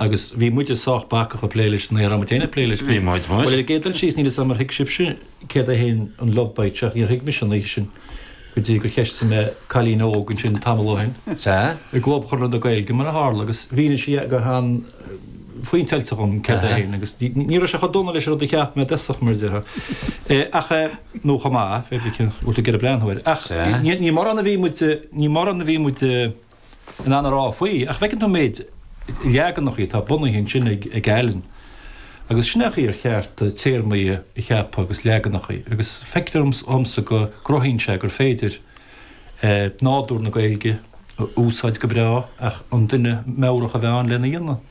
agus bhí muide sách bacach ag plé leis, níor fhan muid féin ag plé leis. Bhí muid, muis. Bhuel, ar an gcéad dul síos, níl 'fhios a'm ar thuig sibhse céard é fhéin an Love Bite seo, ach níor thuig mise an oíche sin go dtí gur cheistigh mé cailín óg ansin tamall ó shin, sea, i gClub Chonradh na Gaeilge mar a tharla, agus mhínigh sí go han-phointeáilte dhom céard é fhéin, agus ní raibh sé chomh dona leis an rud a cheap mé i dtosach, mar a déarfá, ach eh, nó chomh maith, bhfuil tú ag iarraidh breathnú air, ach ní mórán a bhí muid, ní mórán a bhí muid. in ann a rá faoi, ach feiceann tú an méid leaganacha atá bunaithe ansin ag Alan agus sin an chaoi ar cheart téarmaí a cheapadh agus leaganacha agus feictear dhomsa go gcruthaíonn sé gur féidir nádúr na Gaeilge a úsáid go breá ach an duine meabhrach a bheith ann lena dhéanamh.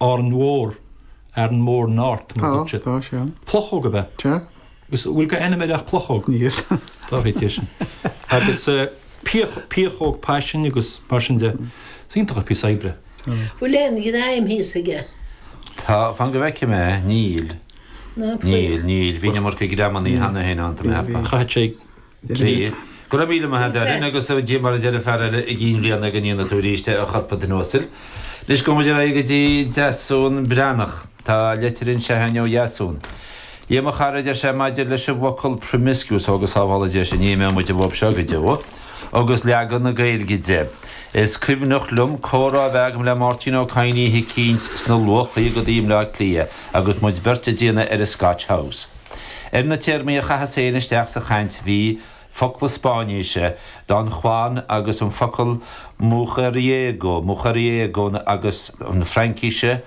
Árainn Mhór, Aran Mor North mar a dúirt siad. Tá, tá, sea. Plucóg ab ea? Sea. Agus bhfuil aon ainm eile ach plucóg? Níl. Tá fhios déibh sin. Agus pioc, piocóg paisin agus mar sin de. Is iontach an píosa oibre. Bhfuil aon ghreim thíos aige? Tá, fan go bhfeicfidh mé, níl. Níl, níl, bhí an iomarca greamannaí cheana féin ann, tá mé ag ceapadh. Chaithfeadh sé Sea. Go raibh míle maith a'd, Alan, agus a Dia mar a deir an fear eile i gcionn bliana go ndéana tú arís é, a choirp an duine uasail. Anois gabhfaidh muid ar aghaidh go dtí Deasún Breathnach. Tá leitir anseo againn ó Dheasún. A Liam, a chara, a deir sé, maidir leis an bhfocal promiscuous ó go sábhála Dia sinn, ní imeoidh muid uathub seo go deo agus leagan na Gaeilge de. Is cuimhneach liom comhrá a bheith agam le Máirtín Ó Cadhain oíche eicínt sna luathchaogaidí i mBaile Átha Cliath agus muid beirt ag déanamh ar an Scotch House. Ar na téarmaí a chaitheas féin isteach sa chaint bhí, focla Spáinnise, Don Juan agus an focal mujeriego, mujeriego agus, na Fraincise,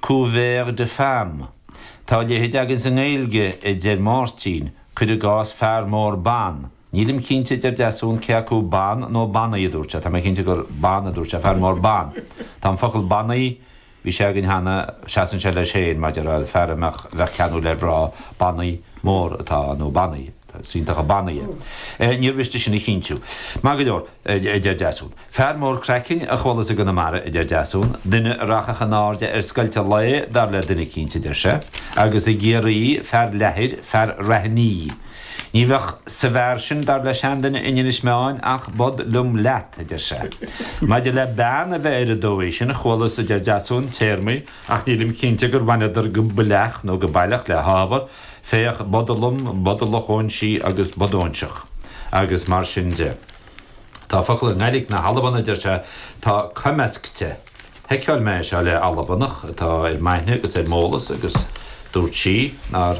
coureur de femmes. Tá a leithéid againn sa nGaeilge, a deir Máirtín, cuir i gcás, fear mór ban. Nílim cinnte, a deir Deasún, cé acu ban nó banaí a dúirt sé. Tá mé cinnte gur ban a dúirt sé, fear mór ban. Tá an focal banaí. Bhí sé againn cheana, seasann sé leis féin maidir le fear a mbeadh, a bheadh ceanúil ar mhná, banaí mór atá ann, nó banaí, tá is iontach an banaí é. Níor mhiste sin a chinntiú. Maith go leor, a deir Deasún. Fear mór craicinn a chualas i gConamara, a deir Deasún. Duine a rachadh in airde ar scoilteadh lae, dar le duine eicínt, a deir sé. Agus i gCiarraí, fear leathair, fear raithní. Ní bheadh sa bhfear sin, dar le seanduine in Inis Meáin, ach bod liom leat, a deir sé. Maidir le bean a bheith ar an dóigh sin, chualas, a deir Deasún, téarmaí, ach nílim cinnte gur bhaineadar go baileach nó go baileach le hábhar, féach bodalom, bodalach óinsí agus bodóinseach, agus mar sin de. Tá focal i nGaidhlig na hAlban, a deir sé, tá coimeasgta. Sheiceáil mé é seo le Albanach atá ar m'aithne agus ar m'eolas agus dúirt sí nár.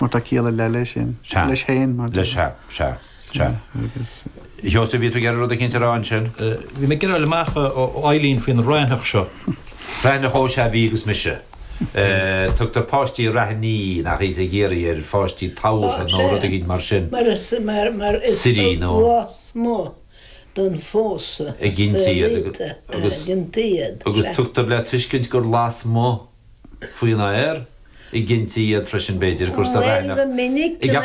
Mar tá ciall ar leith leis sin. Sea. Leis féin, mar Leis, sea, sea, sea. Agus. Sheosaimh, bhí tú ag iarraidh rud eicínt a rá ansin? Bhí mé ag iarraidh a fháil amach ó Eileen faoin Raithneach seo. Raithneach, Ó sea, bhí agus mise. Tugtar páistí Raithní, nach ea ar pháistí tabhartha nó rud eicínt mar sin. Mar is mar is lasmuigh den phósadh a ghintear iad. Agus tugtar le tuiscint gur lasmuigh. faoin aer a gintí iad freisin b'fhéidir, gur sa raithneach, i gCeap an.